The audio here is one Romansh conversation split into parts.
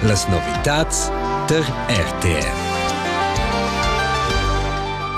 Las novitads tar RTR.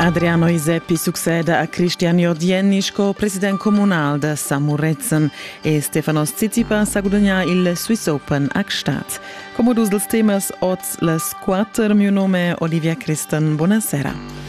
Adriano Iseppi succeda a Cristian Jordienni sco president comunal da Samuretzen e Stefanos Tsitsipas ha gudagnà il Swiss Open a Gstaad. Come dus dels temas oz las quatter, mio nome è Olivia Christen. Buonasera.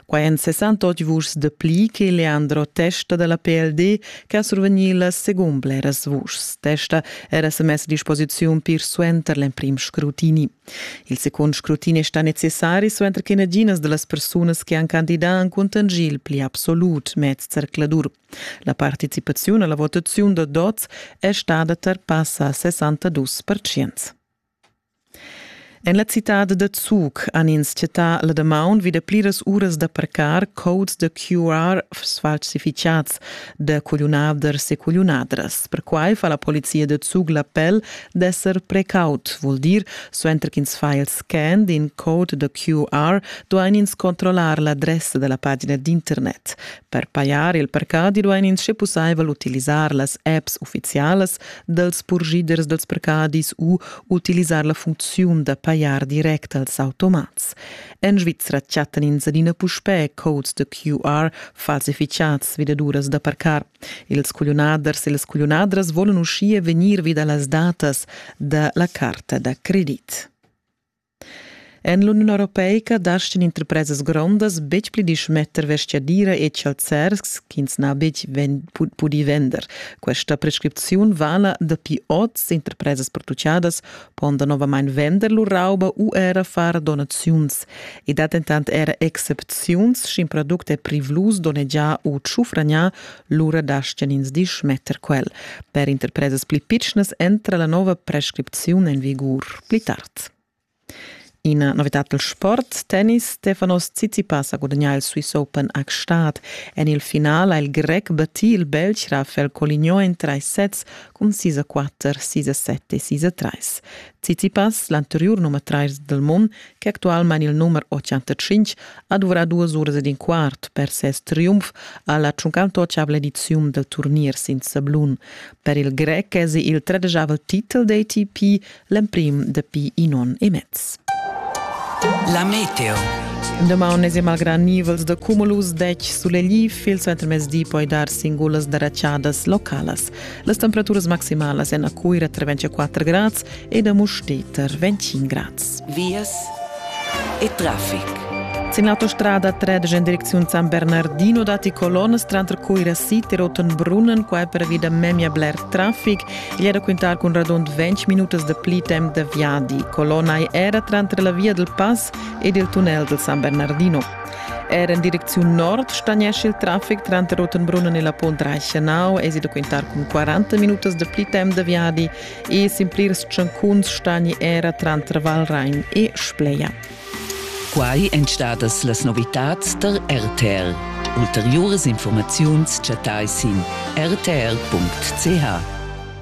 Quai èn 68 vuschs de pli che Leandro Testa della PLD che ha survegni las secund bleras vuschs. Testa era sa mess a disposiziun pir suenter l'emprim scrutini. Il secund scrutini sta necessari suenter che naginas de las persunas che han candidat han contangì il pli absolut mez zercladur. La participaziun alla votaziun da DOZ è stada tar passa a 62%. En la citad da Zug han ins chattà la damaun vi da pliras uras da parcar codes da QR sfalsifitgads da cugliunaders e cugliunadras. Perquai fa la polizia da Zug l'appel d'esser precaut, vul dir, suenter ch'ins fa il scan d'in code da QR duain ins controllar l'adressa da la pagina d'internet. Per pajar il parcadi duain ins sche pussaivel utilisar las apps uffizialas dals purschiders dals parcadis u utilisar la funcziun da pajar direct als automats. En Svizra chattan ins adina puspè codes da QR falsificads vidaduras da parcar. Ils cugliunaders e las cugliunadras volan uschia vegnir vi da las datas da la carta da credit. En l'Uniun europeica dastan interpresas grondas betg pli dismetter vestgadira e chalzers ch'ins n'ha betg pudì vender. Questa prescripziun vala dapi oz. Interpresas produciadas pon danovamain vender lur rauba u era far donaziuns. I dat dentant era excepziuns, sch'in product è privlus, donnegià u tschufragnà, lura dastgan ins dismetter quel. Per interpresas pli pitschnas entra la nova prescripziun en vigur pli tard. Ina novitad dal sport, tennis. Stefanos Tsitsipas ha gudagnà il Swiss Open a Gstaad. En il final ha il grec battì il Belg Rafael Coligno en trais sets cun 6-4, 6-7 e 6-3. Tsitsipas, l'anteriur nummer trais dal mund, che actualmein il numer 85 ha duvrà duas uras ed in quart per ses triumf alla 58 ediziun del turnier sin sablun. Per il grec esi il tredejavel titel d'ATP l'emprim dapi in on e mez. La meteo. Demà unesem al gran nivels de cumulus dec sulegli fil suenter mezdi poi dar singulas daraciadas localas. Las temperaturas maximalas en a Cuira tra 24 grads ed a Musteter 25 grads. Vias e traffic. Sin l'autostrada tredg en direcziun San Bernardino datti colonnes tranter Cuira City e Rottenbrunnen, qua pervi da memia bler traffic. Gli è da quintar cun radund 20 minutas de pli temp da viadi. Colonna era tranter la via del Pass ed il tunnel del San Bernardino. Era en direcziun nord stagnesce il traffic tranter Rottenbrunnen e la Pont Reichenau es da quintar cun 40 minutas de pli temp de viadi e simplirs tschancuns stagni era tranter Valrhein e Spleia. Quai èn stadas las novitads tar RTR. Ulteriuras informaziuns chattai sin rtr.ch.